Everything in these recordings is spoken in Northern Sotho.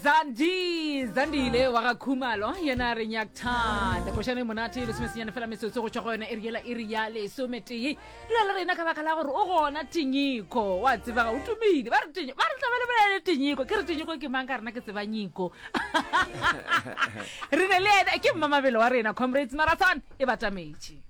zandi zandile wa ga khumalo yena re nyakthanda košane monate lesomesenyane fela metsotso go tšwa go yona e riela e re ya lesometee dula le rena ka baka la gore o gona tinyiko wa tsebaga o tumile ba re tinyo ba re tlabele bolele tinyiko ke re tinyiko ke mang ka rena ke tseba nyiko re ne le ene ke mmamabelo wa rena comrades marathon e batametše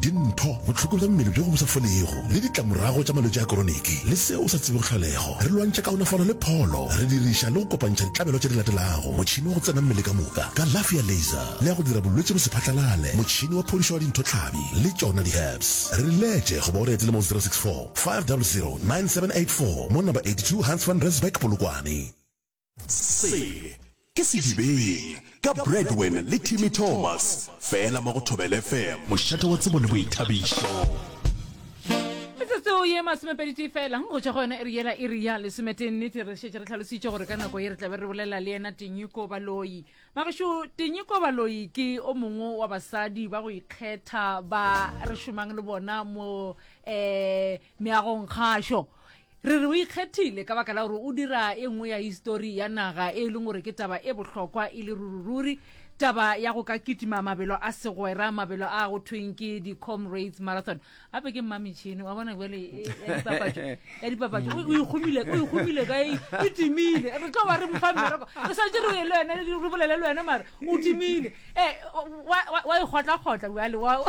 dintho, bohloko bja mmele bjo bo sa folego, le ditlamorago tša malwetši a koroniki le se o sa tsebego tlholego. Re lwantšha kaonafalo le pholo re diriša le go kopantšha ditlabelo tše di latelago, motšhene wa go tsena mmele ka moka, kalafi ya laser le ya go dira bolwetši bo se phatlalale, motšhene wa phodišo wa dintho tlhabi le tšona di-herbs. Re letše goba o re etele mo 064 500 9784 mo Number 82 Hans Van Rensburg, Polokwane. Se ke Sedibeng ka Bradwin le Timmy Thomas fela mo go Thobela FM. Mošate wa tsebo le boithabišo. Metsotso ye masomepedi tee fela go tšwa go yona e re yela e re ya lesometee nnete re šetše re tlhalositše gore ka nako ye re tlabe re bolela le yena tenyiko baloi bagešo tenyiko baloi ke o mongwe wa basadi ba go ikgetha ba re šomang le bona mo um meagong kgašo Re re o ikgethile ka baka la gore o dira e nngwe ya histori ya naga e e leng gore ke taba e bohlokwa e le ruri-ruri, taba ya go ka kitima mabelo a segwera, mabelo a go thweng ke di-Comrades Marathon. Gape ke mmametšhene, wa bona bjale e, ya dipapatšo, ya dipapatšo. O o ikgomile, o ikgomile ka e e timile. Re tlo ba re mo fa mmereko. Re swanetše re ye le wena, re bolele le wena mara o timile. Eh, wa e kgotla-kgotla bjale wa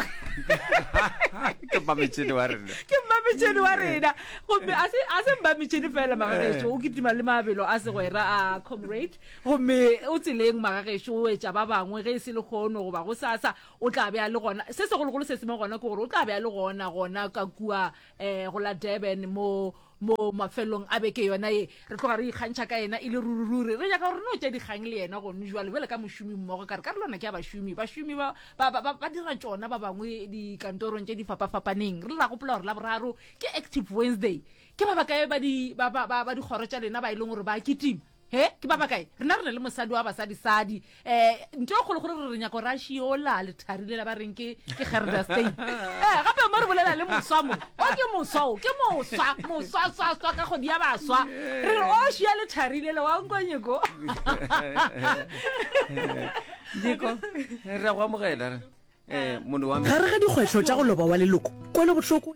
ke mmametšhene wa rena ke mmametšhene wa rena gomme a se mmametšhene fela magagešo o ketima le mabelo a segwera a comrade gomme o tseleng magagešo o etša ba bangwe ge e se le kgono goba go sasa o tla beya le gona se segologolo se seme gona ke gore o tla beya le gona gona ka kua um go la durban mo mo mafelong a beke yona ye re tloga re ikgantšha ka yena e le ruri-ruri re nyaka gore no tša dikgang le yena gone jwale bjale ka mošomi mmogo ka re ka re lona ke ya bašomi bašomi ba, ba, ba, ba dira tšona ba bangwe dikantorong tše di fapafapaneng re ra gopola gore la boraro ke active wednesday ke ba bakae ba dikgoro tša lena ba e leng gore ba kitima He, ke ba bakae? Rena re na le mosadi wa basadi sadi. Eh, nto e kgolo gore re re nyako ra shiola le tharile la ba reng ke ke Gerda Stein. Eh, gape mo re bolela le moswa mo. O ke moswa o, ke moswa, moswa swa swa ka go dia ba swa. Re re o shia le tharile le wa nkwa nyeko. Nyeko, re a go amogela re. Eh, mono wa me. Gare ga dikgwetlho tša go loba wa leloko, kwelo bohloko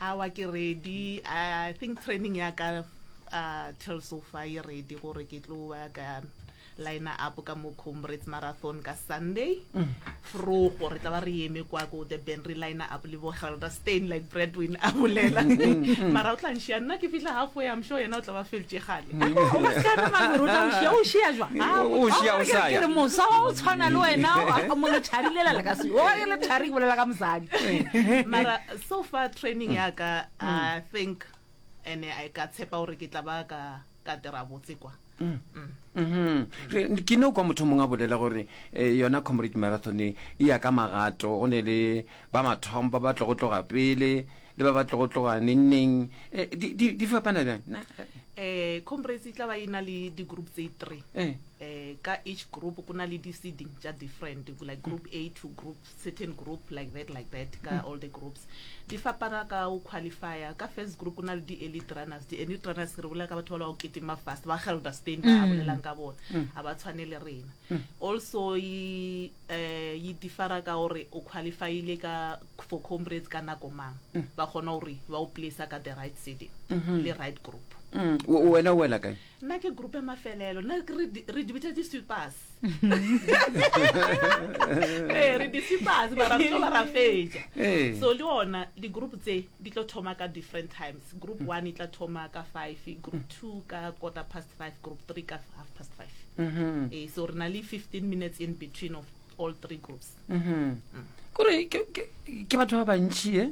Aowa ke ready, I think training ya ka till so far e ready gore ke tlo ba ka liner up ka mo Comrades Marathon ka Sunday. Mm. Frogo re tla ba re eme kwa ko the band re liner up le bo Helder Stain like Bradwin a bolela. Mm, mm, mm. Mara o tla nshia nna ke fihla halfway I'm sure yena o tla ba feltše gale. O ka re mangwe o tla nshia o shia jwa. Ah, o shia o sa ya. Ke mosa wa o tshwana le wena o mo le tharilela le ka se. O le thari bolela ka mosadi. Mara so far training ya ka i think ene i ka tshepa gore ke tla ba ka ka dira botse kwa Mm. Mhm. Re- ke no kwa motho mongwe a bolela gore eh, yona comrade marathon e e ya ka magato go ne le ba mathomo ba ba tlogo tloga pele le ba ba tlogo tloga nengneng Eh, di- di di fapana bjang Na- eh comrades e tla ba e na le di-group tse three eh. eh ka each group ku na le di-seeding tša different ku like group a to group certain group like that like that ka mm. all the groups di fapana ka o qualifier ka first group go na le di-elite runners di-elite runners re bolela ka batho ba le ba go ketima fast ba gelda spain ba mm. bolelang ka bona mm. a ba tshwane le rena also e eh, differa ka gore o qualifyile ka for comrades ka nako mang ba kgona gore ba o placea ka the right city mm-hmm. le right group wena o wela kae Nna ke group ya mafelelo nna ke re di- re di bitsa di-sweepers ee re di-sweepers mara re tlo ba ra fetša Ee. so le ona di-group tse di tlo thoma ka different times group one e tla thoma ka five group two ka quarter past five group three ka half past five Mhm. ee so re na le fifteen minutes in between of all three groups kore ke- ke ke batho ba bantši e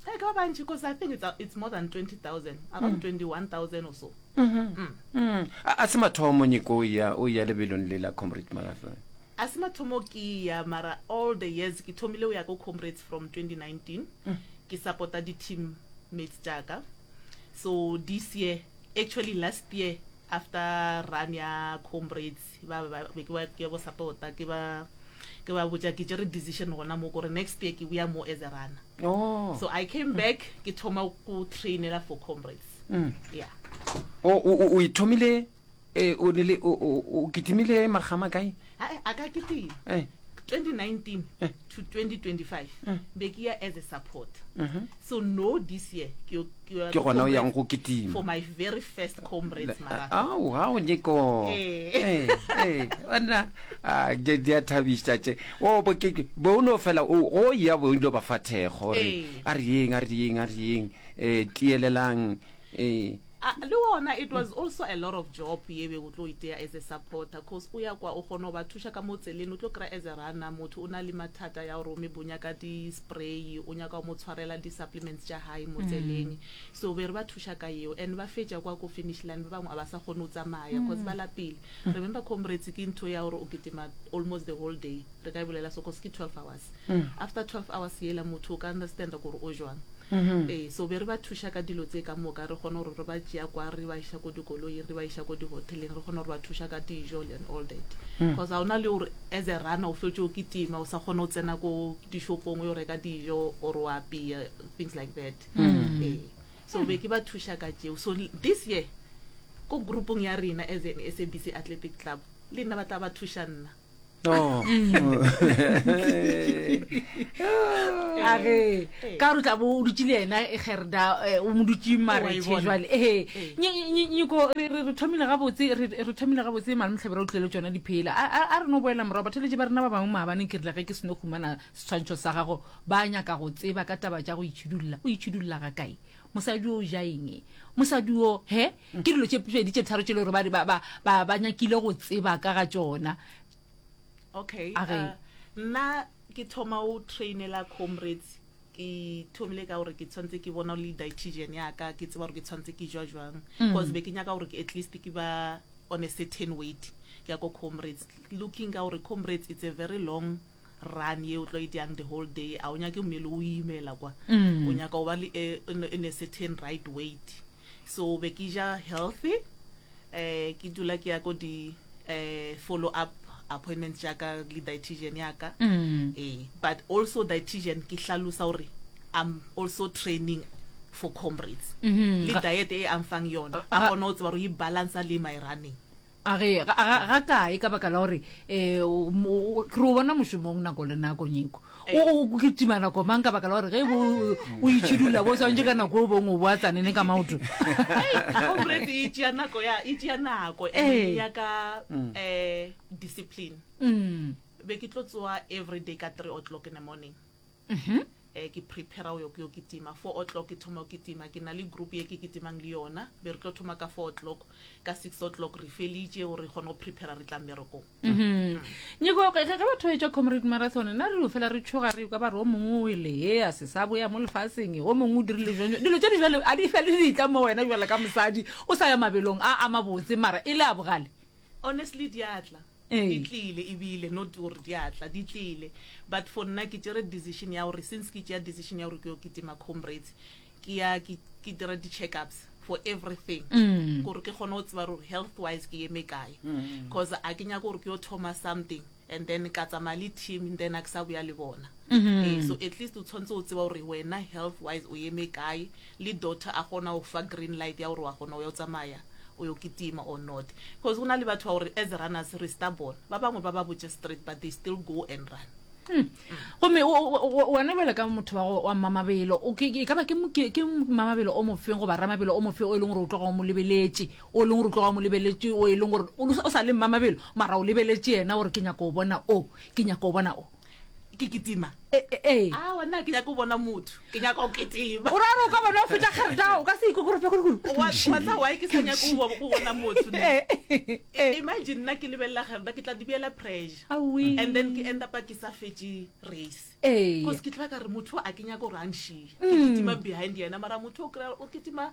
Hey, ka ba bantši because i think it's, uh, it's more than 20000 around 21000 or so Mm. a a se mathomo nyeko o ya o ya lebelong le la comrade magafe a se mathomo ke ya mara all the years ke thomile o ya ko comrades from 2019 ke supporta di-team mates jaaka so this year Actually last year after run ya comrades ba ba be ke ba ke bo support ke ba ke ba botša ke tsere decision gona mo gore next year ke boya mo as a runner oh. so i came back ke thoma go trainela for comrades mm. yeah o o o ithomile e o ne le o- o o kitimile makgama kae ae a ka kitima Eh. 2019 to 2025 be ke ya as a support so no this year ke yo- ke yo- Ke gona o yang go kitima. for my very first comrades marathon ao ga o nyeko Eh. ona ke di a thabiša tše o bo ke ke- bo o no fela o o ya bo o ile ba fa thekgo gore Eh. a re yeng a re yeng a re yeng um tielelang um Ah, le wona it was also a lot of job ye be o tlo itea as a supporter cause o ya kwa o kgona go ba thuša ka mo tseleng o tlo kry as a runner motho o na le mathata ya gore o me bonya ka di-spray o nyaka go mo tshwarela di-supplements tša gae mo tseleng mm. so be re ba thuša ka yeo and ba fetša kwa ko finish line ba bangwe a ba sa kgone go tsamaya cause ba mm. lapile mm. remember comrades ke ntho ya gore o ketima almost the whole day re ka e bolela so cause ke 12 hours after twelve hours yela motho o ka understanda gore o jwang ee so be re ba thuša ka dilo tse ka moka re kgone gore re ba tšea kwa re ba iša ko dikoloing re ba iša ko dihoteleng re kgone gore ba thuša ka dijo and all that because ga o na le gore as a runner o fetše o kitima o sa kgone go tsena ko dishopong o yo reka dijo or o apea things like that ee so be ke ba thuša ka tšeo so this year ko groupong ya rena as an sabc athletic club le nna ba tla ba thuša nna Oh. a re ka gore o tla bo o dutse le ena e gerda eh, o mo dutse marethe bona. jale ee nyeko re re- re thomile gabotse re re thomile gabotse malemtlhebe re o tlele tsona diphela a a- a re no boela morago batheletše ba rena ba bangwe maabaneng ke rile ge ke seno humana setshwantšho sa gago ba nyaka go tseba ka taba tša go itšhidulla o itšhidulla ga kae mosadi o ja eng mosadi o he Ke dilo tše pedi tše tharo tše le gore ba ba ba ba ba nyakile go tseba ka ga tšona. Okay. A re. Uh, nna ke thoma o trainela comrades ke thomile ka gore ke tshwanetse ke bona le dietitian ya ka ke tseba gore ke tshwanetse ke jwa jwang mm. because be ke nyaka gore at least ke ba on a certain weight ke ya ko comrades looking ka gore comrades it's a very long run ye o tlo e dyang the whole day a o nyake mmele o imela kwa o nyaka o ba le eh, in, in a certain right weight so be ke ja healthy eh ke dula ke ya ko di eh follow up appointments tša ka le dietitian ya ka eh but also dietitian ke hlalosa gore i'm also training for comrades le diet e a mfang yona a kgone go tseba gore e balancer le my running A re, Ga, ga, ga kae, ka baka la gore e, o, mo, o, ke re o bona mošomong nako le nako, Nyeko. O, o, o kitima nako mang, ka baka la gore ge bo, o itšhidulla bo swantše ka nako o bong o boa tsanene ka maoto. Hei, comrade e tšea nako ya, e tšea nako and e Ee. nyaka um discipline. Umm. Be ke tlo tsoa everyday ka three o'clock in the morning. Ke prepare go yo kitima, four o'clock ke thoma go kitima, ke na le group ye ke kitimang le yona, be re tlo thoma ka four o'clock, ka six o'clock re felitše gore re kgone go prepare re tla mmerekong. Nyeko, ge ge batho ba etšwa Comrade Marathon, nna re dio fela re tšhoga re ekwa ba re o mongwe o wele he, a se sa boya mo lefaseng, o mongwe o dirile bjang-bjang, dilo tše di bjalo a di fe le ditla mo wena bjalo ka mosadi o sa ya mabelong a a mabotse mara e le a bogale? Honestly di a tla. Ee. Di tlile ebile not gore di a tla, di tlile. But for nna ke tšere decision ya gore since ke tšea decision ya gore ke yo kitima Comrades, ke ya ke ke dira di-checkups for everything gore ke kgone go tseba gore health wise ke eme kae. Cause a ke nyake gore ke yo thoma something and then ka tsamaya le team and then a ke sa boya le bona. Ee, so at least o tshwanetse o tseba gore wena health wise o eme kae Le doctor a kgona go fa green light ya gore wa kgona go ya go tsamaya o yo kitima or not. Cause go na le batho ba gore as runners re stubborn. Ba bangwe ba ba botše straight but they still go and run. Gomme o, o, o, wena bjalo ka motho wa go, wa mmamabelo, o, ke, ke, e ka ba ke, mo- ke, ke mmamabelo o mofeng goba ramabelo o mofeng o e leng gore o tloga o mo lebeletše, o e leng gore o tloga o mo lebeletše, o e leng gore o, o sa le mmamabelo, mara o lebeletše yena gore ke nyaka o bona o, ke nyaka o bona o. ke kitima ee a wena ke nyaka o bona motho ke nyaka o kitima o raro ka bona o feta kgerda o ka se ikokorope goregoreatla wa ke sa nyaka o bona motho imagine nna ke lebelela kgerda ke tla dibeela pressure and then ke enda pa ke sa fetše race ee ke tla ka re motho a ke nyaka o rangshie ke kitima behind yena mara motho o kry o kitima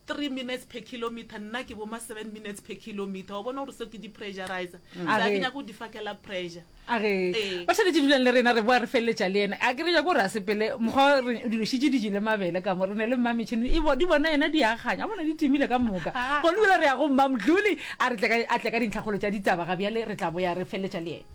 three minutes per kilometer nna ke boma seven minutes per kilometer wa bona gore seo ke di-pressurizer mm. a ke nyaka go di fakela pressure a re ee. ba tshwanetse dulang le rena re boa re feleletša le ena a ke re ja ko re a sepele mokgwa re dilositše di jele mabele ka mo re ne le mmametšhini e di bona ena di aganya a bona di timile ka moka ah. go lebile re ya go mmamdlole a re a tle ka dintlhakgolo tša ditaba ga bjale re tla boya re feleletša le ena